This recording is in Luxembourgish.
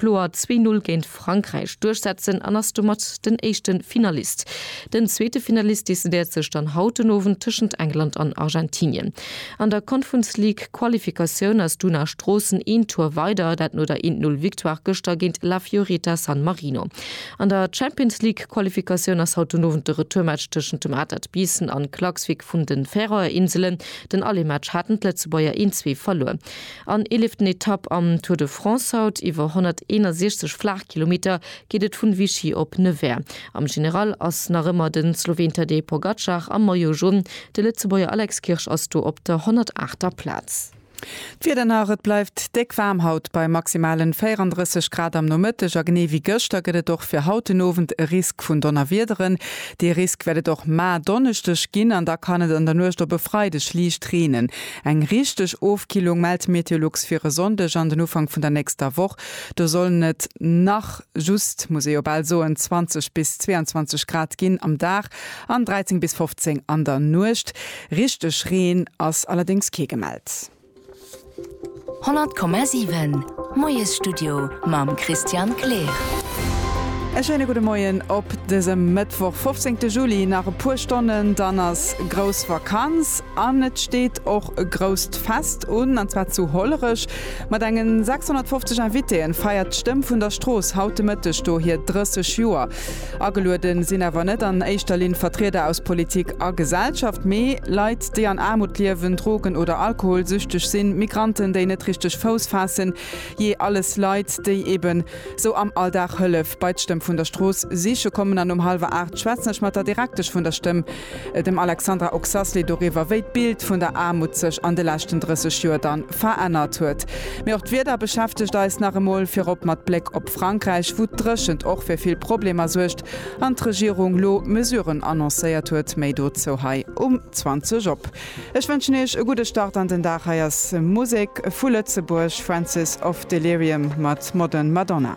kloer zwee Null géint Frankräich duerchsetzen an ass domat den éischte Finalist. Den zweete Finalist decidéiert sech dann haut den Owend tëschent England an Argentinien. An der Conference League Qualifikatioun ass d'Una Stroossen een Tour weider, dat no der een Null Victoire gëschter géint La Fiorita San Marino. An der Champions League Qualifikatioun ass haut den Owend de Retourmatch tëschent dem Atert Biissen an Klaksvik vun den Färöer Inselen. Den Allemaatch haten d'Lëtzebuerger een Zwee verluer. An eeleften Etapp am Tour de France haut. Iwwer 161 Flaachkilometer geet et vun Vichy op Nevers. Am General ass nach ëmmer den Slowen Tadej Pogacar am Maillot Jaune. De Lëtzebuerger Alex Kirsch ass do op der 108 ter Plaz. D'Wieder nach, Et bleift déck waarm haut bei maximalen 34 Grad am Nomëtteg a genee wéi gëschter gëtt et och fir haut den Owend e Risk vun Donnerwiederen. Dee Risk wäert et och maer Donneschdeg ginn an da kann et an der Nuecht op e Freideg liicht reenen. Eng richteg Ofkillung mellt d'Meteolux fir e Sonndeg an den Ufank vun der nächster Woch. Do sollen et nach just, muss ee jo bal soen, 20 bis 22 Grad ginn am Dag an 13 bis 15 an der Nuecht. Richteg Reen ass allerdéngs kee gemellt. 100,7 Moiesstudio mam Christian Kleer. E schéine gudde Moien op dësem Mëttwoch 15 Juli. Nach e puer Stonnen, dann ass grouss Vakanz. An et steet och e grousst Fest un, an zwar zu Hollerech. Mat engen 650 Invitéen feiert d'Stëmm vun der Strooss haut de Mëtteg do hir 30 Joer. Agelueden sinn awer net an éischter Linn Vertrieder aus Politik a Gesellschaft, mee Leit, déi an Aarmut liewen, Drogen oder Alkoholsüchteg sinn, Migranten, déi net richteg Fouss faassen, jee, alles Leit, déi eben sou am Alldag Hëllef bei d'Stëmm vun der Strooss siche kommen. An um hallwer 8 schwätzen ech mat der Direktesch vun der Stëmm, Dem Alexandra Oxasley doriwwer, wéi d'Bild vun der Aarmut sech an de leschten 30 Joer dann verännert huet. Mee och d'Wieder beschäftegt eis nach emol, virop mat Bléck op Frankräich, wou d'Dréchent och fir vill Problemer suergt an d'Regierung lo Mesuren annoncéiert huet. Méi dozou hei um 20 op. Ech wënschen iech e gudde Start an den Dag. Hei ass Musek vu Lëtzebuerg, Francis of Delirium mat Modern Madonna.